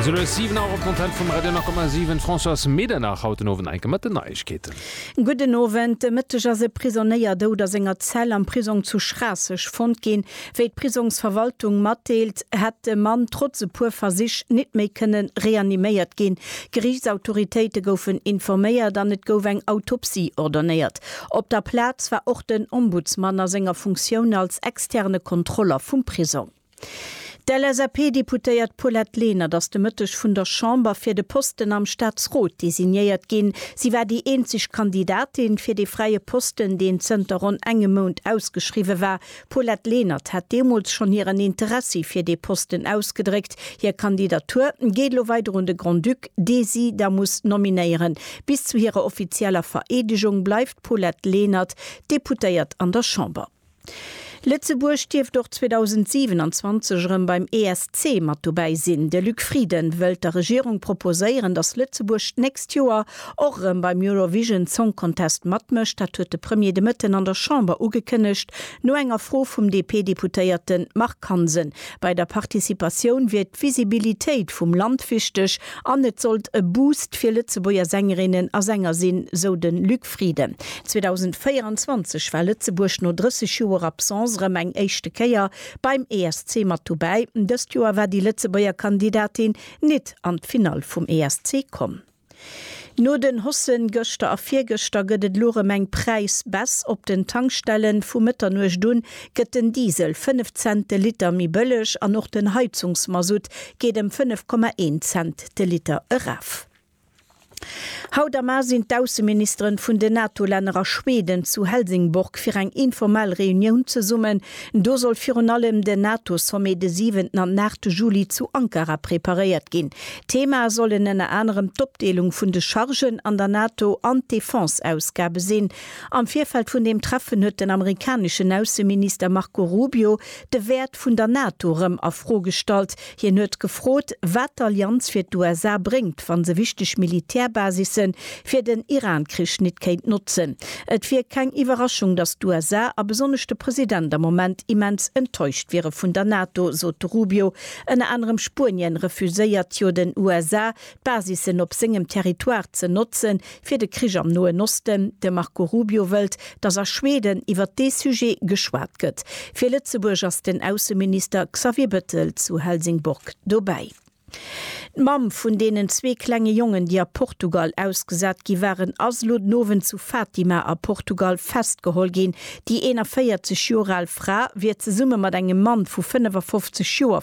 Esou lues 7 Auer op d'Antenne vum Radio 9,7. D'Françoise Medernach haut den Owend enke mat den Neiegkeeten. Gudden Owend. De Mëtteg ass e Prisonéier dout a senger Zell am Prisong zu Schraasseg fonnt ginn. Wéi d'Prisongsverwaltung matdeelt, hätt de Mann trotz e puer Versich nit méi kënne reaniméiert ginn. Geriichtsautoritéite goufen informéiert an et gouf eng Autopsie ordonéiert. Op der Plaz war och den Ombudsman a senger Funktioun als externe Kontroller vum Prisong. D'LSAP-Deputéiert Paulette Lenert ass de Mëtteg vun der Chamber fir de Posten am Staatsrot designéiert ginn. Si war déi eenzeg Kandidatin fir dee fräie Posten, deen zënter ronn engem Mount ausgeschriwwe war. D'Paulette Lenert hat deemools schonn hiren Interessi fir dee Posten ausgedréckt. Hir Kandidatur geet elo weider un de Grand-Duc, dee si da muss nominéieren. Bis zu hirer offizieller Vereedegung bleift d'Paulette Lenert Deputéiert an der Chamber. Lëtzebuerg dierft och 2027 erëm beim ESC mat dobäi sinn. De Luc Frieden wëllt der Regierung proposéieren, datt Lëtzebuerg d'nächst Joer och erëm beim Eurovision Song Contest matmécht. Dat huet de Premier de Mëtten an der Chamber ugekënnegt, no enger Fro vum DP-Deputéierte Marc Hansen. Bei der Participatioun wier d'Visibilitéit vum Land wichteg an et sollt e Boost fir Lëtzebuerger Sängerinnen a Sänger sinn, sou de Luc. Frieden. 2024 war Lëtzebuerg no 30 Joer Absence erëm eng éischte Kéier beim ESC mat dobäi. Dëst Joer war déi Lëtzebuerger Kandidatin nit an d'Finall vum ESC komm. No den Hossen gëschter a virgëschter gëtt et elo erëm eng Präisbaisse op den Tankstellen. Vu Mëtternuecht un gëtt den Diesel 5 Cent de Liter méi bëlleg an och den Heizungsmasutt geet ëm 5,1 Cent de Liter eraf. Haut am A sinn d'Ausseministeren vun den NATO-Länner a Schweden zu Helsingborg fir eng informell Reunioun zesummen. Do soll virun allem den NATO-Sommet de siwenten an aachte Juli zu Ankara preparéiert ginn. Theemae sollen ënner anerem d'Opdeelung vun de Chargen an der NATO an d'Defense-Ausgabe sinn. Am Virfeld vun deem Treffen huet den amerikaneschen Ausseminister Marco Rubio de Wäert vun der NATO erëm a Fro gestallt, Hien huet gefrot, wat d'Allianz fir d'USA bréngt, wa se wichteg Militärbasisse fir den Iran-Krich nit kéint notzen. Et wier keng Iwwerraschung, datt d'USA a besonnesch de President am Moment immens enttäuscht wiere vun der NATO, sot de Rubio. Ënner anerem Spuenien refuséiert jo den USA Basissen op sengem Territoire ze notzen, fir de Krich am Noen Osten. De Marco Rubio wëllt, datt a Schweden iwwer dee Sujet geschwat gëtt. Fir Lëtzebuerg ass den Ausseminister Xavier Bettel zu Helsingborg dobäi. D'Mamm vun deenen zwee klenge Jongen, déi a Portugal ausgesat gi waren, ass elo den Owend zu Fatima a Portugal festgeholl ginn. Déi 41 Joer al Fra wier zesumme mat engem Mann vu 55 Joer